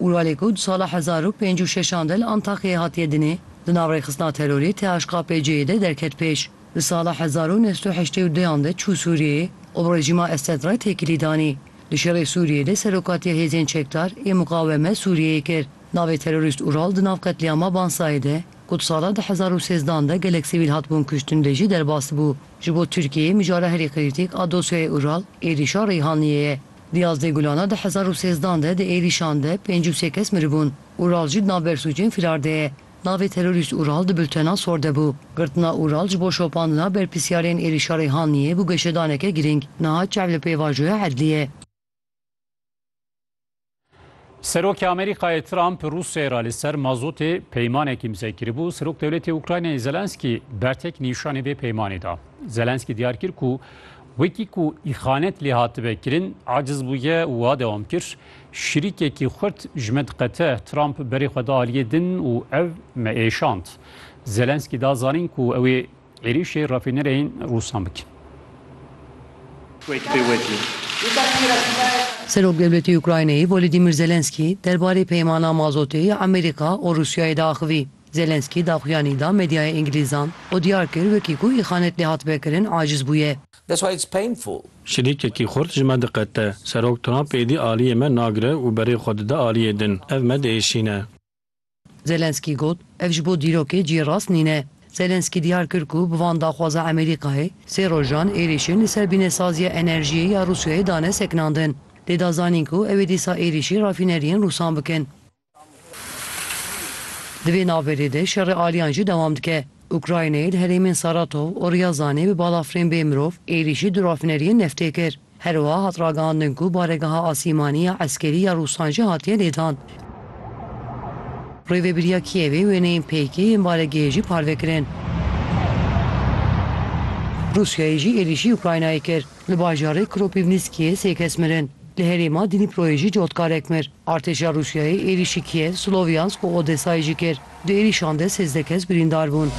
Uralê ku di sala hezar û pênc û şeşan de li Antakyayê hatiye dinê, di nav rêxistina terorê THKPC'ê de derket pêş. Di sala hezar û neh sed û heştê û duyan de çû Sûriyeyê û bi rejîma Esed re têkilî danî. Di şerê Sûriyeyê de serokatiya hêzên çekdar ê Muqaweme Sûriyeyê kir. Navê terorîst Ural di nav qetlîama Bansayê de ku di sala di hezar û sêzdan de gelek sivîl hatibûn kuştin de jî derbas bû. Ji bo Tirkiyeyê mijara herî qîrtîk a dosyayê Ural êrîşa Reyhanliyê ye. Di yazdeh gulana di hezar û sêzdan de di êrîşan de pênc û sê kes miribûn. Ural jî di nav bersûcên fîrar de ye. Navê terorîst Ural di bultena sor de bû. Girtina Ural ji bo şopandina berpirsiyarên êrîşa Reyhanliyê bû geşedaneke girîng. Niha çav li pêvajoya Edliyê. Serokê Amerîkayê Trump Rûsyayê re li ser mazotê peymanekî imze kiribû. Serok Dewletê Ukraynayê Zelenskî bertek nîşanî vê peymanê da. Zelenskî diyar kir ku wekî ku îxanet lê hatibe kirin aciz bûye û wiha dewam kir, Şirîkekî xurt ji me diqete. Trump berê xwe da aliyê din û ev me êşand. Zelenskî da zanîn ku ew ê Êrîşê rafînereyên rûsan bikin. Serokdewletî Ukraynayê Volodîmîr Zelenskî derbarê peymana mazotê ya Amerîka û Rûsyayê de axivî. Zelenskî daxuyanî da medyaya îngilîzan û diyar kir wekî ku îxanet lê hatibe kirin aciz bûye. Şilîkekî xurt ji me diqete. Serok Trump êdî aliyê me nagire û berê xwe dide aliyê din. Ev me diêşîne. Zelensky got, Ev ji bo dîrokê cî rast nîne. Zelensky diyar kir ku bi van daxwaza Amerîkayê, sê rojan êrîşên li ser bînesaziya enerjiyê ya Rûsyayê dane sekinandin. Lê da zanîn ku ew ê dîsa êrîşî rafîneriyên rûsan bikin. Di vê navberê de şerê aliyan jî dewam dike. Ukraynayê di herêmên Saratov û Ryazanê bi balafirên bê mirov êrîşî du rafîneriyên neftê kir. Herwiha hat ragihandin ku baregeha asîmanî ya eskerî ya Rûsan jî hatiye lêdan. Rêvebiriya Kîevê wêneyên PYK yên baregehê jî parve kirin. Rûsyayê jî êrîşî Ukraynayê kir. Li bajarê Kropîvnîskiyê sê kes mirin. Li herêma Dnîproyê jî cotkarek mir. Artêşa Rûsyayê êrîşî Kîev, Slowyansk û Odesayê jî kir. Di êrîşan de sêzdeh kes birîndar bûn.